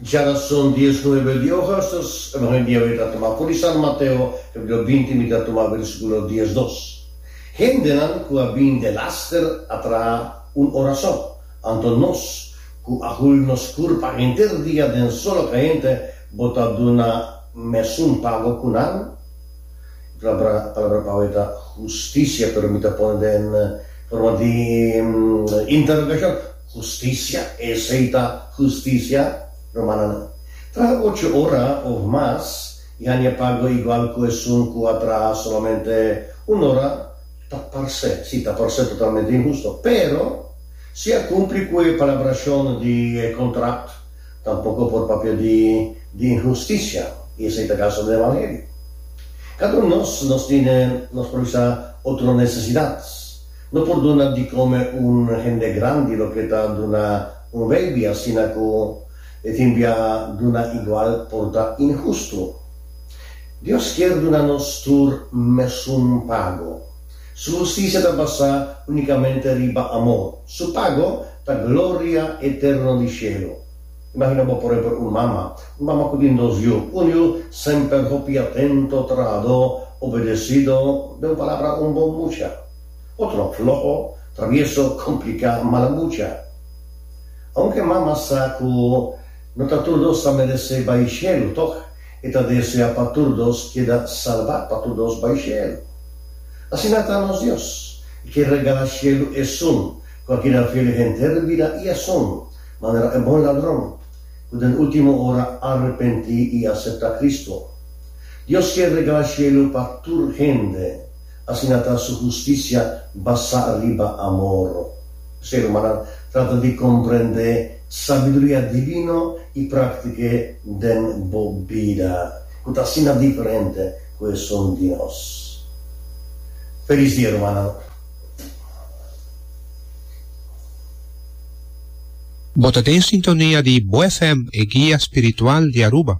Djara son dies nuebe di ogas, nos e ban e biawe ta tuma kuri San Mateo, e blo binti mi ta tuma versikulo dies dos. Hendenan ku a bin den laster a traha un orason, anto nos, ku a hul nos kur pa henter dia den solo kayente, bo ta duna mesun pago ku nan? E palabra palabra pawe ta hustisia, pero mi ta pone den forma di interogashon. Husticia, esey ta husticia, romananan. Traha ocho ora of mas y haña pago igual cu esun cu a traha solamente un ora ta parse, si, ta parse totalmente inhusto. Pero, si a cumpli cu e palabracion di e contract, tampoco por papia di di inhusticia, y esey ta caso den Evangelio. Cada un nos, nos tin nos propi sa otro necesidad. No por duna di come un hende grandi loke ta duna un baby asina cu e tin bia duna igual por ta inhusto. Dios kier duna nos tur mesun pago. Su husticia ta basa unicamente riba amor. Su pago ta gloria eterno di cielo. Imagina bo por empel un mama. Un mama cu tin dos yu. Un yu semper hopi atento, trahador, obedecido, den un palabra un bon mucha. Otro floho, travieso, complica, mala mucha. Aunke mama sa cu no ta tur dos ta merece bay shelu, toch e ta desea pa tur dos keda salba, pa tur dos bay shelu. Asina ta nos Dios. E kier regala shelu esun cu a keda fiel henter bida y asun manera e bon ladron cu den ultimo ora arrepenti y acepta Cristo. Dios kier regala shelu pa tur hende. Asina ta su hustisia basá riba amor. P'esei, rumannan, trata di komprendé sabiduria divino i práktik'e den bo bida, ku ta asina diferente ku esun di nos. Felis dia, rumannan. Bo ta den sintonia di Bo FM, e guia spiritual di Aruba.